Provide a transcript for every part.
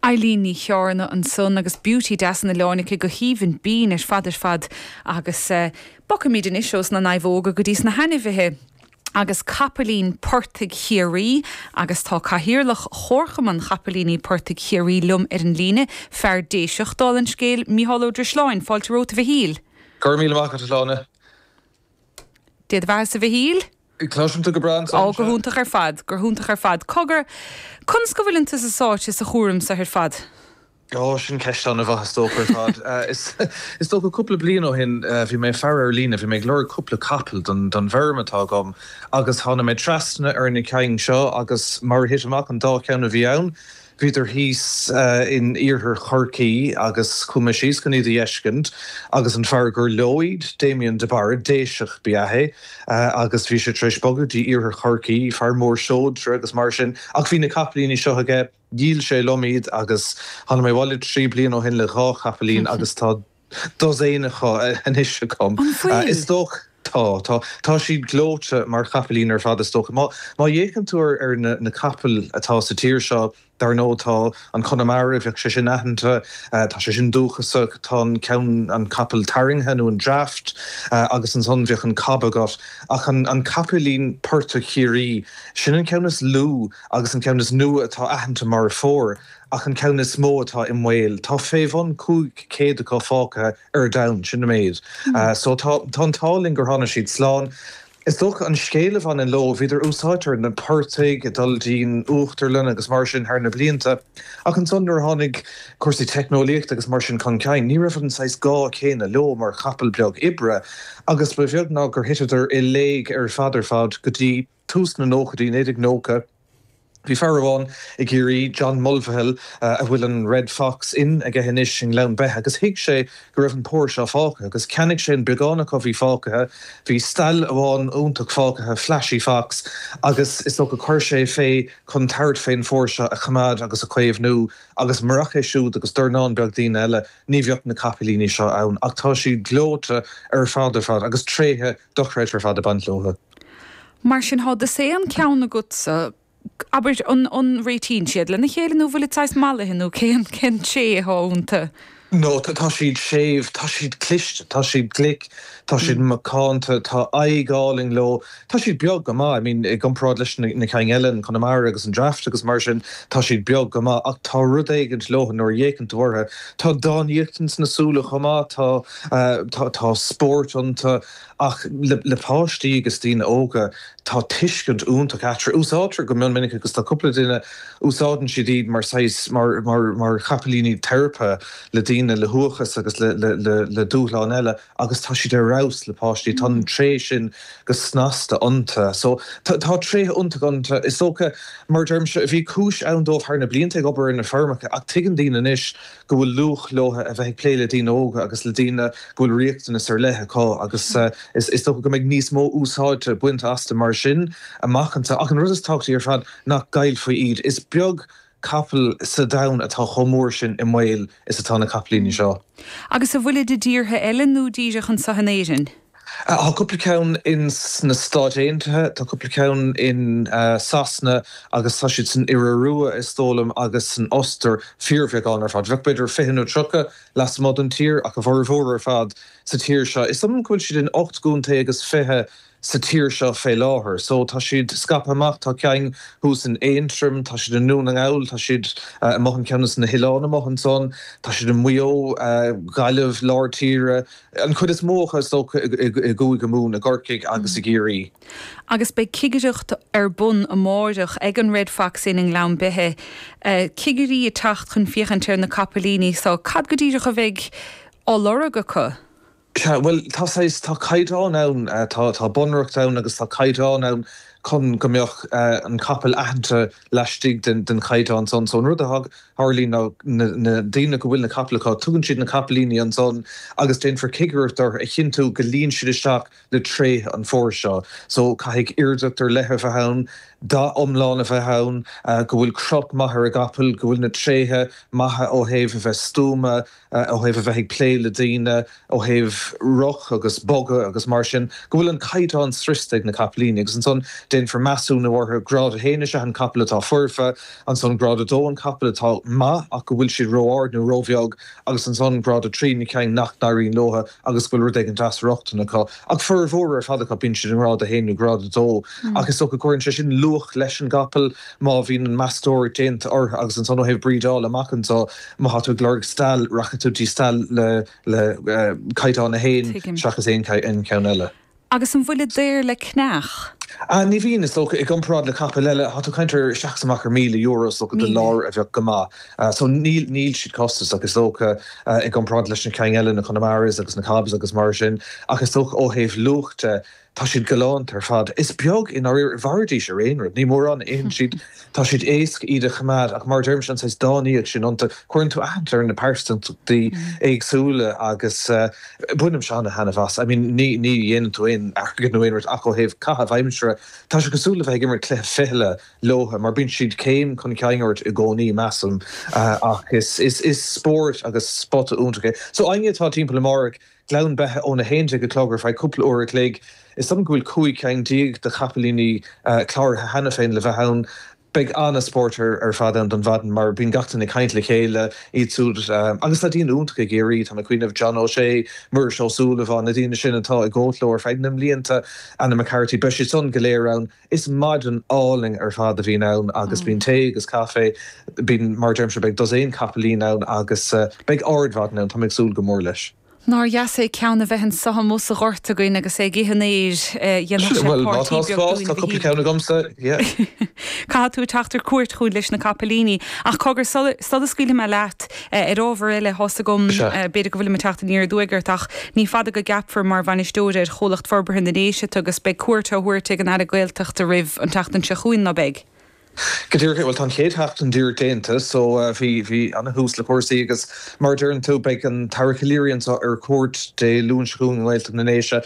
Eilín Ní Chearna ansan agus Beauty Deas an Oileáin aici go haoibhinn binn ar fad ar fad agus bogfaimid anois ós na naomhóga go dtí sna hainmhithe agus capaillín portaigh Chiarraí agus tá cathaoirleach Chomharchumann Chapaillíní Portaigh Chiarraí liom ar an líne, fear Déiseach, dála an scéil, Micheál Ó Drisleáin, fáilte romhat a Mhichíl. Go raibh míle maith agat, a Shláine. Dia do bheathasa a Mhichíl. Cloisim thú go breá anso Ó, go hiontach ar fad, go hiontach ar fad. Cogar, conas go bhfuileann tusa sáite sa chúram so ar fad? Ó, sin ceist an-mhaith, is dócha, ar fad. Is dócha, cúpla bliain ó shin, bhí mé ag faire ar líne, bhí mé ag lorg cúpla capall don bhfeirm atá agam agus thána mé trasna ar na cinn seo agus mar a thit amach an dá cheann a bhí ann, Bhíodar thíos in iarthar Chorcaí agus chuaigh mé síos chun iad a fheiscint agus an fear gur leo iad, Damien de Barra, Déiseach ba ea é agus bhí sé tar éis bogadh dtí iarthar Chorcaí, fear mór seodra agus mar sin ach bhí na capaillíní seo aige, dhíol sé liom iad agus tháinig mé abhaile trí bliana ó shin le dhá chapaillín agus tá dosaen anois agam. An bhfuil? Is dócha. Tá, tá. Tá siad gleoite mar chapaillín ar fad, is dócha. Má fhéachann tú ar na capaill atá sa tír seo, dar ndóigh tá an Connemara, bheadh sé sin aitheanta, tá sé sin dúchasach, tá an ceann, an capall tarraingthe nó an draught agus ansan bheadh an cob agat. Ach an capaillín portaigh Chiarraí, sin an ceann is lú agus an ceann is nua atá aitheanta mar phór. ach an ceann is mó atá i mbaol. Tá fé bhun cúig chéad acu fágtha ar domhan, sin an méid so. Tá an t-ádh linn gur tháinig siad slán. Is dócha an scéal a bhaineann leo, bhíodar, úsáidte ar na portaigh ag dul dtí'n uachtarlann agus mar sin thar na blianta, ach ansan nuair a tháinig cúrsaí teicneolaíochta agus mar sin chun cinn, ní raibh an saghas gá céanna leo mar chapall beag oibre agus ba bheag ná gur thiteadar i léig ar fad ar fad go dtí. tús na nóchaidí, 1990, bhí fear amháin i gCiarraí, John Mulvihill, a bhfuil an Red Fox Inn aige anois i nGleann Beithe, agus thuig sé go raibh an pór seo fágtha, agus cheannaigh sé an beagán acu a bhí fágtha. Bhí stail amháin iontach fágtha, flashy fox, agus is dócha gur chuir sé é fé chun tabhairt fén phór seo a choimeád agus a chaomhnú, agus murach é siúd agus dornán beag daoine eile, ní bheadh na capaillíní seo ann. Ach tá siad gleoite ar fad ar fad, agus tréithe dochreidthe ar fad ag baint leothu. Mar sin tá dosaen ceann agatsa, abair, an réitíonn siad lena chéile nó an bhfuilid saghas mallaithe nó cén tréith atá iontu? No, tá siad séimh, tá siad cliste, tá siad glic, tá siad macánta, tá aghaidh álainn leo, tá siad beag go maith, I mean, i gcomparáid leis na cinn eile, an Connemara agus an Draft agus mar sin, tá siad beag go maith ach tá rud éigint leothu nuair a fhéachann tú orthu, tá dánaíocht ins na súile chomh maith, tá spórt iontu. Ach le páistí agus daoine óga, tá tuiscint iontach eatarthu. Úsáidtear go mion minic iad, agus tá cúpla duine, úsáideann siad iad mar saghas, mar mar chapaillíní teiripe le daoine le huathachas agus le dúshláin eile, agus tá siad ar fheabhas le páistí. Tá an tréith sin go snasta iontu. So, tá tréithe iontacha iontu. Is dócha, mar a deirimse, bhí cúis ann dóibh thar na blianta ag obair ar na feirmeacha, ach tuigeann daoine anois go bhfuil luach leotha a bheith ag plé le daoine óga agus le daoine go bhfuil riachtanais ar leith acu agus is dócha go mbeidh níos mó úsáide bainte astu mar sin amach anseo. Ach an rud is tábhachtaí ar fad nach gcaillfí iad. Is beag capall sa domhan atá chomh mór sin i mbaol is atá na capaillíní seo. Agus an bhfuilid i dtíortha eile nó díreach anseo in Éirinn? Tá cúpla ceann in sna Stáit Aontaithe, tá cúpla ceann in Sasana agus tá siad san Iorua, is dóigh liom, agus san Ostair, fíorbheagán ar fad. Bheadh b'fhéidir fiche nó tríocha lasmuigh den tír ach a bhformhór ar fad sa tír seo. Is dóigh liom go bhfuil siad in ocht gcontae agus fiche sa tír seo fé láthair. So tá siad scaipthe amach, tá ceann thuas in Aontroim, tá siad i nDún na nGall, tá siad amuigh in ceann sna hoileáin amuigh ansan, tá siad i Maigh Eo, Gaillimh, Lár Tíre, An chuid is mó acu, is dócha, i gCúige Mumhan, i gCorcaigh agus i gCiarraí. Agus beidh cigireacht ar bun amáireach ag an Red Fox Inn i nGleann Beithe. Cigirí ag teacht chun féachaint ar na capaillíní so. Cad go díreach a bheidh á lorg acu? Sea, bhuel, tá saghas, tá caighdeán ann, tá bunreacht ann agus tá caighdeán ann chun go mbeadh an capall aitheanta laistigh den chaighdeán san. So an rud a tharlaíonn ná na daoine go bhfuil na capaill acu, tugann siad na capaillíní ansan agus déanfar cigireacht orthu a chinntiú go luíonn siad isteach le tréithe an phóir seo. So caithfidh aoirdeacht ar leith a bheith ann, dath iomlán a bheith ann, go bhfuil crot maith ar an gcapall, go bhfuil na tréithe maithe ó thaobh a bheith stuama, ó thaobh a bheith ag plé le daoine, ó thaobh rith agus bogadh agus mar sin, go bhfuil an caighdeán sroichte ag na capaillíní, agus ansan déanfar measúnú orthu. Grád a haon, is ea an capall atá foirfe, ansan grád a dó, an capall atá maith ach go bhfuil siad ró-ard nó ró-bheag, agus ansan grád a trí, na cinn nach n-éiríonn leotha agus go bhfuil rud éigin de dheacrachtaí acu, ach formhór ar fad acu, bíonn siad i ngrád a haon nó grád a dó, ach is dócha go gcuireann sé sin luach leis an gcapall má bhíonn an meastóireacht déanta orthu. Agus ansan ó thaobh brídeála amach anseo, má tá tú ag lorg stail, rachaidh tú dtí stail le le caighdeán a haon seachas aon cheann eile. Agus an bhfuilid daor le ceannach? Ní bhíonn, is dócha. I gcomparáid le capaill eile, tá tú ag caint ar isteach is amach ar míle euro, is dócha, do láir a bheadh go maith. So, ní, níl siad costasach, is dócha, i gcomparáid leis na cinn eile, na Connemaras agus na Cobs agus mar sin. Ach is dócha ó thaobh luach de, tá siad galánta ar fad. Is beag, mhairfidís ar aon rud. Ní mórán a itheann siad. Tá siad éasca iad a choimeád ach, mar a deirimse, an saghas dánaíocht sin iontu, cuireann tú aithne ar na pearsantachtaí éagsúla agus bainimse an-thaitneamh as. I mean, ní dhéanann tú aon airgead nó aon rud ach ó thaobh caitheamh aimsire, tá sé cosúil le bheith ag imirt cluiche fichille leotha mar bíonn siad céim chun cinn ort i gcónaí, measaim, ach is spórt agus spota iontach é. So, éinne atá timpeall amárach, Gleann Beithe ón 11 a chlog ar feadh cúpla uair a chloig. Is dóigh go bhfuil cúig ceann déag de chapaillíní cláraithe cheana féin le bheith ann. Beidh an-spórt ar fad ann don mhaidin mar bíonn gach duine ag caint le chéile, iad siúd agus na daoine iontacha i gCiarraí, tá mé ag cuimhneamh, John O'Shea, Muiris Ó Súilleabháin, na daoine sin atá ag gabháilt leo ar feadh na mblianta, Anna McCarthy, beidh siad san go léir ann. Is maidin álainn ar fad a bhíonn ann agus bíonn tae agus caife, bíonn, mar a deirimse, beidh dosaen capaillín ann agus beidh ardmhaidin ann, tá mé ag súil go mór leis. Nár dheas é ceann a bheith anseo amuigh sa ghort againn agus é ag ithe an fhéir, dhéanfadh sé páirtí beag dúinn go hiontach. Bhuel, má tá spás, tá cúpla ceann agamsa, yeah. Caithfidh tú teacht ar cuairt chugainn leis na capaillíní. Ach cogar sula scaoilfidh mé leat, Ar ábhar eile, tá's agam, b'fhéidir go bhfuilim ag teacht aniar aduaidh ort, ach ní fada go gceapfar mar bhainisteoir ar Chomhlacht Forbartha na nDéise thú agus beidh cuairt á thabhairt ag an Aire Gaeltachta oraibh an tseachtain seo chugainn, ná beidh? Go díreach, bhuel tá an chéad sheachtain díreach déanta so bhí bhí ana-thús le cúrsaí agus mar a deireann tú, beidh an tAire Calleary anseo ar cuairt Dé Luain seo chugainn i nGaeltacht na nDéise,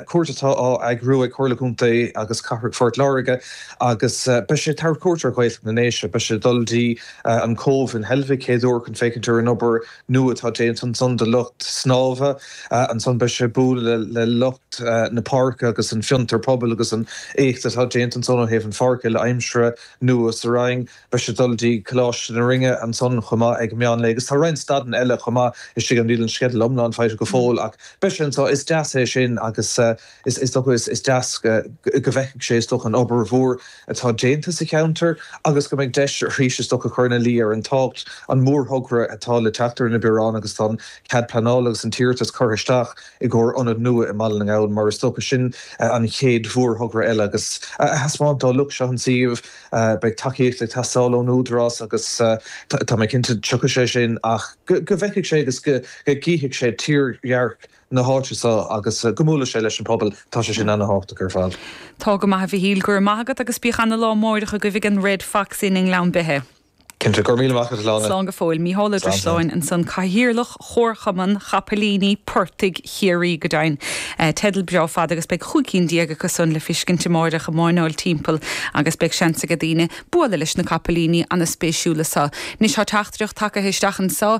cuairt atá á eagrú ag Comhairle Contae agus Cathrach Phort Láirge agus beidh sé ag tabhairt cuairt ar Ghaeltacht na nDéise, beidh sé ag dul dtí an Cé in Heilbhic chéaduair chun féachaint ar an obair nua atá déanta ansan do lucht snámha. Ansan beidh sé ag bualadh le lucht na páirce agus an fiontar pobail agus an éacht atá déanta ansan ó thaobh an pháirc uile-aimsire nua sa Rinn. Beidh sé ag dul dtí Coláiste na Rinne ansan chomh maith ag meán lae agus tá roinnt stadanna eile chomh maith istigh ann. Níl an sceideal iomlán faighte go fóill ach beidh sé anso. Is deas é sin agus Is dócha, is deas, go bhfeicfidh sé, is dócha, an obair mhór atá déanta sa cheantar agus go mbeidh deis arís, is dócha, cur ina luí ar an tábhacht an mórthogra atá le teacht ar na bioráin agus tá an cead pleanála agus an t-iarratas curtha isteach i gcomhair ionad nua i mBaile na nGall mar is dócha sin an chéad mhórthogra eile agus a thaispeáint dá lucht seo an suíomh. Beidh tacaíocht ag teastáil ón Údarás agus tá mé cinnte tiocfaidh sé sin ach go bhfeicfidh sé agus go gcífidh sé tírdhearc na háite seo agus go mbuailfidh sé leis an bpobal. Tá sé sin ana-thábhachtach ar fad. Tá go maith, a Mhichíl. Go raibh maith agat agus bíodh ana-lá amárach agaibh ag an Red Fox Inn i nGleann Beithe. Cinnte. Go raibh míle maith agat, a Sláine. Slán go fóill. Mícheál Ó Drisleáin ansan, Cathaoirleach Chomharchumann Chapaillíní Portaigh Chiarraí. Go deimhin. Teideal breá fada agus beidh cúig cinn déag acu san le feiscint amárach ag máirneáil timpeall agus beidh seans ag daoine bualadh leis na capaillíní ana-spéisiúla seo. Anois tá teachtaireacht tagtha isteach anso.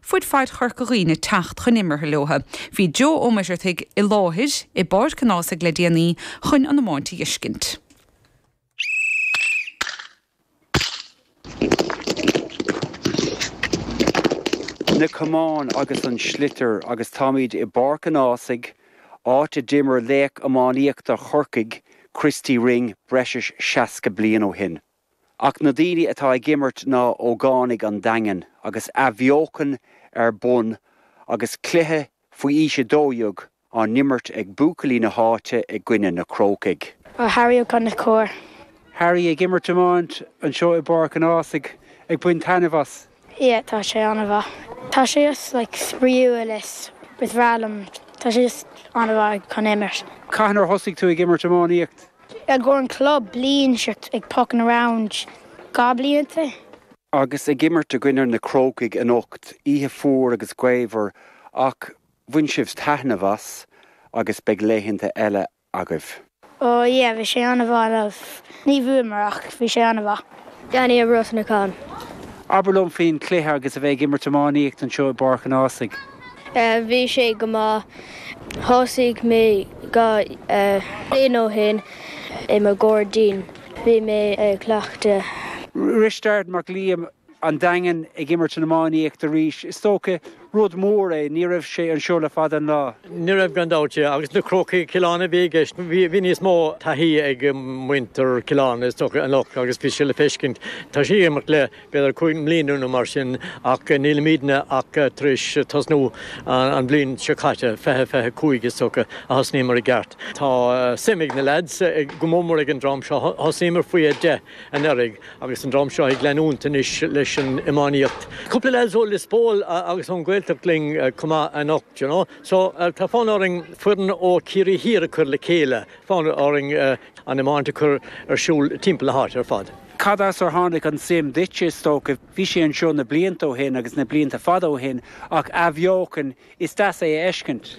fuaid fad Chorca Dhuibhne teacht chun imeartha leo. Bhí Joe Ó Muircheartaigh i láthair i bPáirc an Ághasaigh le déanaí chun an iomáint a fheiscint. Na camáin agus an sliotar agus táimid i bPáirc an Ághasaigh, áit a d'imir laoch iománaíochta Chorcaigh, Christy Ring, breis is seasca bliain ó shin. Ach na daoine atá ag imirt ná ógánaigh an Daingin agus athbheochan ar bun agus cluiche faoi aois 12 á n-imirt ag buachaillí na háite i gcoinne na Crócaigh. Ó Harry Ó Conchúir. Harry ag imirt iomáint anseo i bPáirc an Ághasaigh ag baint taitneamh as. yeah tá sé ana-mhaith tá sé just like spraíúil is is bhreá liom tá sé just ana-mhaith chun imirt. Cathain ar thosaigh tú ag imirt iománaíocht? I gcomhair an chlub bliain seo ach ag pucking around dhá blianta. Agus ag imirt i gcoinne na Crócaigh anocht, oíche fuar agus gaofar ach bhain sibh taitneamh as agus beidh laethanta eile agaibh? Ó, yeah, bhí sé an-mhaith, like. Ní bhuamar ach bhí sé an-mhaith. Danny Ó Brosnacháin. Abair liom faoin chluiche agus a bheith ag imirt iománaíocht anseo i bPáirc an Ághasaigh. Eh, bhí sé go maith. Thosaigh mé dhá bhliain ó shin i mo ghairdín. Bhí mé ag cleachtadh. Risteard Mac Liam. an Daingean ag imirt an iománaíocht arís. Is dócha rud mór é, ní raibh sé anseo le fada an lá. Ní raibh gan dabht, agus na Crócaigh Chill Airne a bhí i gceist. Bhí níos mó taithí ag muintir Chill Airne is dócha anocht agus bhí sé le feiscint. Tá siad ag imirt le b'fhéidir cúig mbliana nó mar sin ach nílimidne ach tar éis tosnú an bhliain seo caite, fiche, fiche cúig is dócha a thosnaíomar i gceart. Tá suim ag na leaids go mór mór ag an dream seo, thosnaíomar faoi a deich. anuraidh agus an dream seo ag leanúint anois leis an iománaíocht. Cúpla lads ó Lios Póil agus ón Ghaeltacht linn chomh maith anocht, you know. So, tá fonn orainn foireann ó Chiarraí Thiar a chur le chéile, fonn orainn an iomáint a chur ar siúl timpeall na háite ar fad. Cad as ar tháinig an tsuim duitse, is dócha? Bhí sé anseo na blianta ó shin agus na blianta fada ó shin ach athbheochan Is deas é a fheiscint.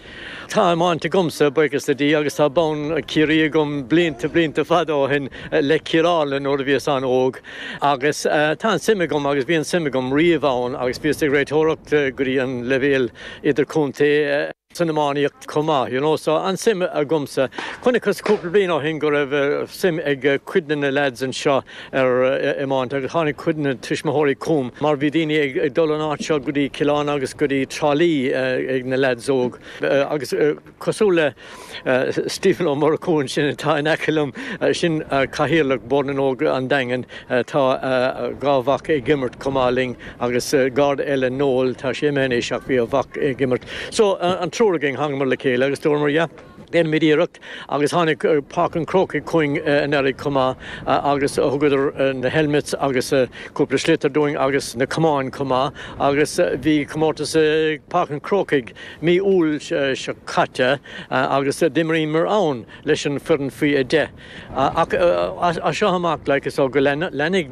Tá iomáint agamsa, buíochas le Dia, agus tá bonn Chiarraí agam blianta, blianta fada ó shin, le Cill Airne nuair a bhíos an-óg. Agus tá an-suim agam agus bhí an-suim agam riamh ann agus bhíos ag réiteoireacht go dtí an leibhéal idirchontae san iománaíocht chomh maith, you know, so an-suim agamsa. Chonaiceas cúpla bliain ó shin go raibh suim ag cuid de na lads anseo ar iomáint agus tháinig cuid de na tuismitheoirí chugam mar bhí daoine ag dul an áit seo go dtí Cill Airne agus go dtí Trá Lí ag na leaids óg agus cosúil le Stephen Ó Murchú ansin atá in aice liom, sin Cathaoirleach Bhord na nÓg an Daingin, tá a dhá mhac ag imirt chomh maith linn agus Garda eile, Noel, tá sé imithe anois ach bhí a mhac ag imirt. So an triúr againn, thángamar le chéile agus dúramar yeah, déanfaimid iarracht agus tháinig Páirc an Chrócaigh chugainn anuraidh chomh maith agus thugadar na helmets agus cúpla sliotar dúinn agus na camáin chomh maith agus bhí comórtas i bPáirc an Chrócaigh mí Iúil seo caite agus d'imríomar ann leis an foireann faoi 10 ach as seo amach like so go leanfaidh